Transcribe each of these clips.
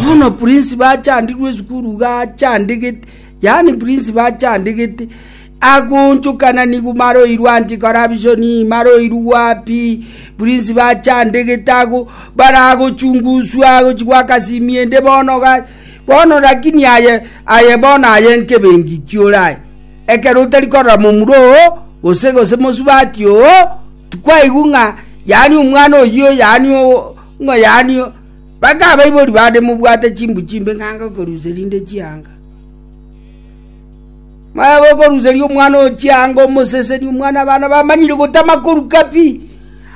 bono prince bachandirwe esukuru iga achandegete yaani prince bachandegete agonchokana nigo maroirwe anti corruption maroirwe wapi prince bachandegete ago baragochunguswa agochi gwakasimia ende bono ga bono lakini aye aye bono aye nkebengi kiore aye ekero otari korora momura oo gose gose mosubati oo tikwaigwa ng'a yaani omwana oyio yaani oo Ng'o yani oo? Baka abaibori bande mobwate chimbu chimbe ng'a ngokoruseria inde chianga. Maya gokoruseria omwana oo chianga omoseseni omwana abana bamanyire gotama koruka pi.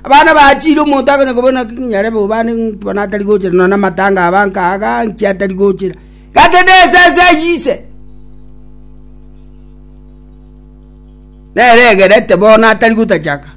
Abana bachire omonto akonya kobona ki nyare bo bande bono atari gocha nonya na matanga aba nka aga nki atari gochera. Gaki nesese eyio ise. Nere egerete bono atari gotachaka.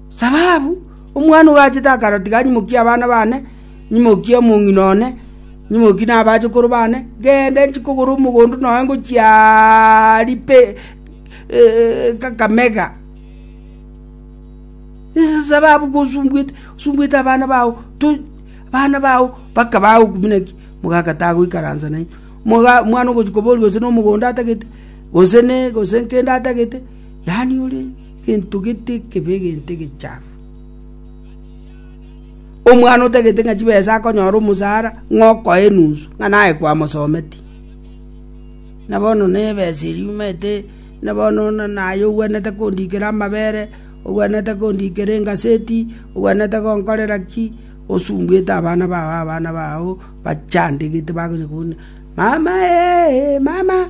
Sababu omwana oyo achete akarotiga anyimokie abana baane, nyimokie omong'ina one, nyimokie nabachokoro baane, gende inche kogora omogondo noe ngochia ripe Kakamega. Ase sababu gosumbuete, osumbuete abana bao, abana bao mpaka bagokumia naki mogakataa goikaransa nainwe. Omwana ogochia koboria gose nomogondo atagete, gose ne gose nkende atagete. Yaani ore gento gete ekebe, egento egechafu. Omwana otagete ng'a chibesa akonyora omosara ng'a okoe enusu ng'a naye kwamosometie. Na bono na ebesa eria omanyete na bono naye ogwenerete kondikera amabere, ogwenerete kondikera engaseti, ogwenerete konkorera ki, osumbuete abana bao abana bao bachandegete bakonya kobuna mama eeh mama.